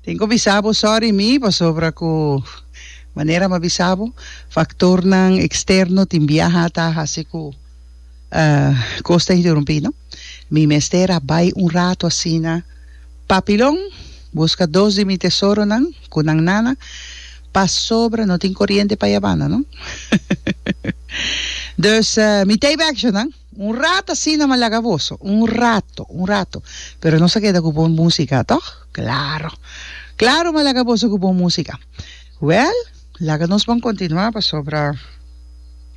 Tin ku bisa bo sòri mi pasobra ku manera mi a bisa bo faktornan eksterno tin biaha a ta hasi ku kos ta interumpí no mi mester a bai un ratu asina papilon buska dos di mi tesoronan ku nan nana pasobra no tin koriente pa ya banda no dus mi teibackshotnan. Un rato asina m'a laga boso, un rato, un rato. Pero nos a keda ku bon músika, tòg? Klaro. Klaro m'a laga boso ku bon músika. Wèl, laga nos bon kontinuá pasobra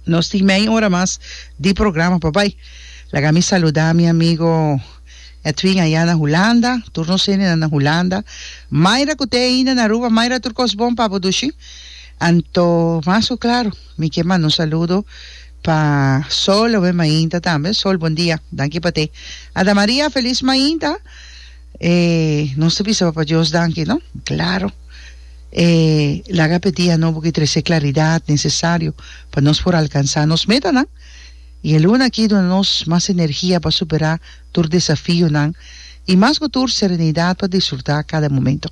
nos tin meia ora mas di programa pa bai. Laga mi saludá mi amigo Edwin ayá na Hulanda, tur nos hendenan na Hulanda. Mayra ku te ainda na Aruba, Mayra tur kos bon pa bo dushi. Anto mas ku klaro mi ke manda un saludo. Pa Sol owe mainta tambe. Sol bon dia. Danki pa te. Ada Maria felis mainta. E nos ta bisa papa Dios danki no. Claro. E laga pe dia nobo ki trece claridad necesario pa nos por alcansa nos metanan. Y e luna aki duna nos mas energia pa supera tur desafionan y mas cu tur serenidad pa disfruta cada momento.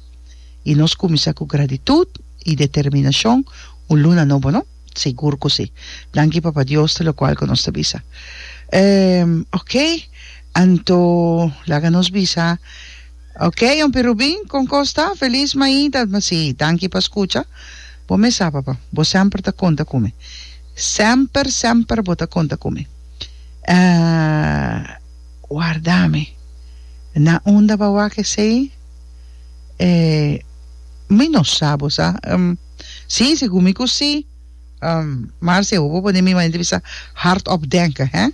Y nos cuminsa cu gratitud y determinacion un luna nobo no. Sigur ku si. Danki Papa Dios te lokual ku nos ta bisa. Ehm, okay, anto laga nos bisa. Okay, Yompi Rubin, kon kos ta? Felis Maida, ma si, danki pa skucha. Bo mes sa, papa, bo semper ta konta ku mi. Semper, semper bo ta konta ku mi. Ahh, warda mi. Na unda bo a wak esei? Eh, mi no sa, bo sa. Sí, segun mi ku sí. Um, mar si e hopi pone mi manera di bisa, hardop denke, hè?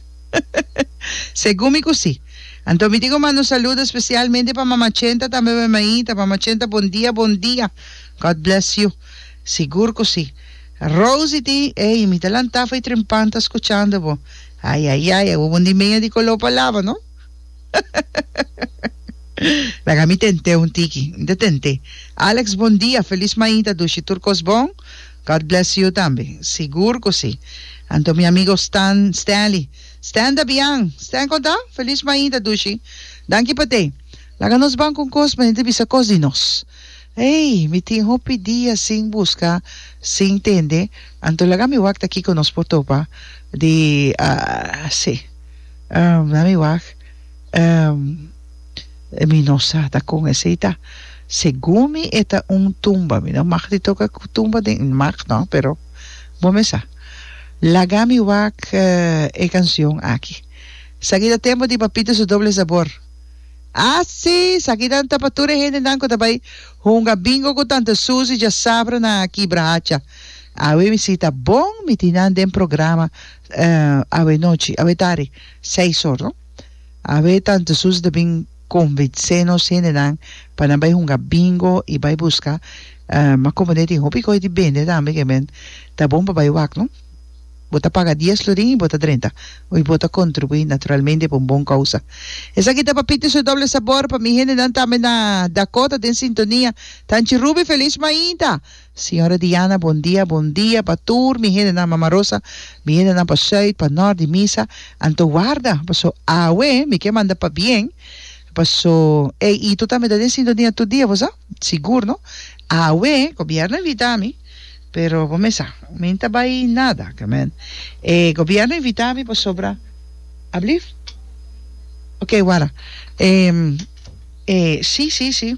Segun mi ku sí. Anto mi tin ku manda un saludo spesialmente pa Mama Chenta tambe pa mi maita. Mama Chenta, bon dia, bon dia. God bless you. Sigur ku sí. Rosie tin, ey, mi ta lanta fei trempanta skuchando bo. Ayayay, e hopi pon di meña di koló pa laba, no? Laga mi tent'é un tiki. Mi ta tent'é. Alex bon dia, felis mainta dushi tur kos bon. God bless you tambe. Sigur ku si. Anto mi amigo Stan, Stanley. Stan ta bian. Stan kon ta? Felis mainta dushi. Danki pa te. Laga nos ban ku un kos mende ta bisa kos di nos. Ey, mi tin hopi dia sin buska, sin tende, anto laga mi wak ta kiko nos por topa di, ah, si. Laat mi wak. Mi no sa ta kon esei ta. Segun mi e ta un tumba. Mi no mag di toka ku tumba den. Mag no, pero bo mi sa. Laga mi wak e canción aki. Saki ta tempo di papito su doble sabor. A si! Sakinan ta pa tur e hendenan ku ta bai hunga bingo ku tante Susi djasabra na Kibrahacha. Awe mi si ta bon mi tin nan den programa Awe nochi, awe tari, seis or no, awe Tante Susi ta bin konvensé nos hendenan pa nan bai hunga bingo i bai buska ma komo den tin hopi kos di bende tambe ke men ta bon pa bai wak no, bo ta paga dies florin i bo ta drenta i bo ta kontribuí naturalmente pa un bon kousa. Esaki ta Papito su doble sabor pa mi hendenan tambe na Dakota den sintonia, Tanchi Ruby felis mainta! Señora Diana bon dia bon dia pa tur mi hendenan mama Rosa mi hendenan pa Zuid pa Nort di misa anto warda paso awe mi ke manda pa bien paso ey y tur ta mi ta den sintonia tur dia bo sa sigur no awe gobierno invita mi pero bo mesa mi ta bay nada e gobierno invita mi pasobra ablief okay wara e si si si.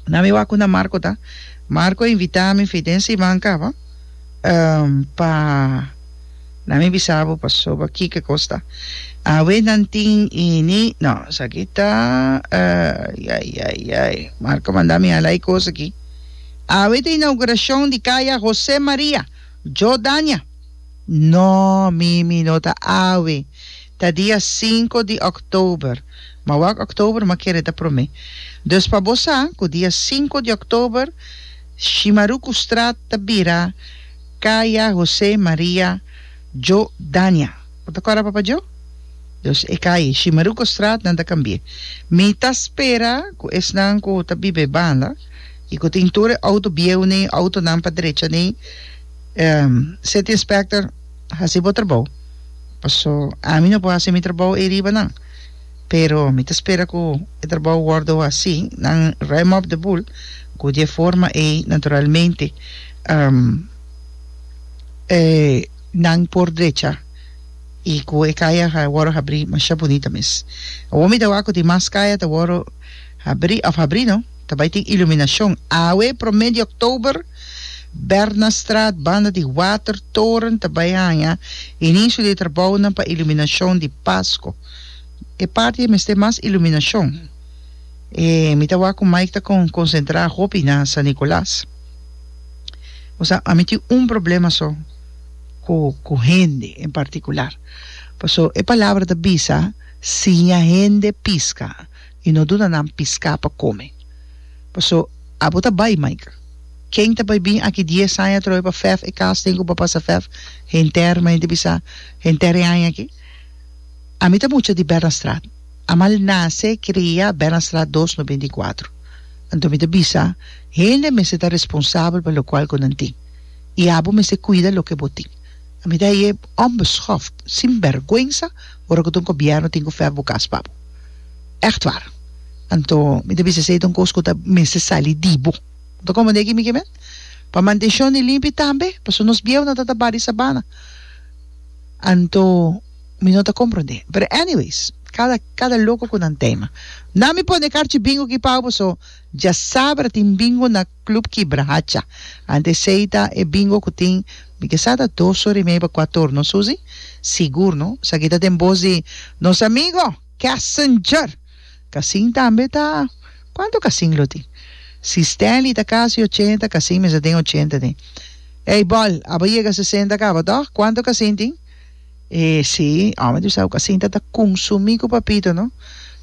na mi wak unda Marco ta, Marco a invita mi fi den siman caba um pa na mi bisa bo pasoba kiko cos ta awe nan tin ini no esaki ta ay ay ay ay Marco manda mi hala e cos aki awe ta inauguracion di caya Jose Maria Jordania no mimi no ta awe Ta dia sinku di òktober. Ma wak òktober ma kere ta promé. Dus pa bo sa ku dia sinku di òktober Shimarukustraat ta bira Kaya José Maria Djo Dania. Bo ta kòrda Papa Djo? Dus e kai Shimarukustraat nan ta kambié. Mi ta spera ku esnan ku ta biba e banda i ku tin tur e outo bieu nei outonan pa drecha nei City Inspector. Hasi bo trabou, paso ami no por hasi mi trabou ei riba nan, pero mi ta spera cu e trabou wordo hasi, nan ruim op de boel, cu di e forma ei naturalmente nan por drecha y cu e caya a wordo habri masha bunita mes. Awor mi ta wak cu di mas caya ta wordo habri, of habri no. Ta bai tin iluminacion awe prome di oktober Bernardstraat banda di Watertoren ta bai haña inicio di trabounan pa iluminacion di Pasko e parti e mester mas iluminacion e mi ta wak cu Mike ta con concentra hopi na San Nicolas o sea ami tin un problema so cu cu hende en particular paso e palabra ta bisa siña hende pisca. i no duna nan piská pa kome. Paso, abo ta bai, Michael. Ken ta bai bin aki dies aña atrobe pa fèf e kas den ku papá sa fèf? Henter, mi a henter bisa, henter e aña aki. Ami ta mucha di Bernstraat. A mal nase, krea, Bernstraat dos no binti kuatro. Anto mi ta bisa, hende mester ta responsabel pa lokual ku nan tin. I abo mester kuida loke bo tin. Ami ta hañ'é onbeschoft, sinbèrgwensa, ora ku ta un gobièrnu tin ku fèf bo kas pa bo. Echtwar. Anto mi ta bisa esei ta un kos ku ta mester sali di bo. Bo ta komprendé aki mi ke men? Pa mantenshon di limpi tambe, pasobra nos bieunan ta tabá di sabana. Anto mi no ta komprendé. Pero anyways, kada kada loko ku nan tema. Na mi pone karchi bingo ki pau pasobra dja sabra tin bingo na Club Kibra Hacha. Ante esei ta e bingo ku tin, mi ke sa ta dos ora i medio pa kua torno, Susi? Sigur no. Esaki ta den bos di nos amigo Kessinger. Kasin tambe ta Kuantu kasin lo tin? Si Stanley ta kasi ochenta, kasin mester den ochenta tin. Ey, bòl, abo yega sesenta kaba tòg? Kuantu kasin tin? E si, omi di Bisao ku a sinta ta konsumí ku papito no.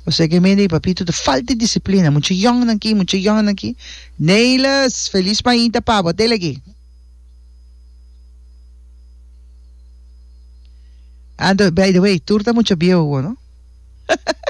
Kosé ke mende di papito ta falta di disiplina, mucha yòn nan aki, mucha yòn nan aki. Neiles, felis mainta pa bo, dele aki. Anto, by the way, tur ta mucha bieu awor no.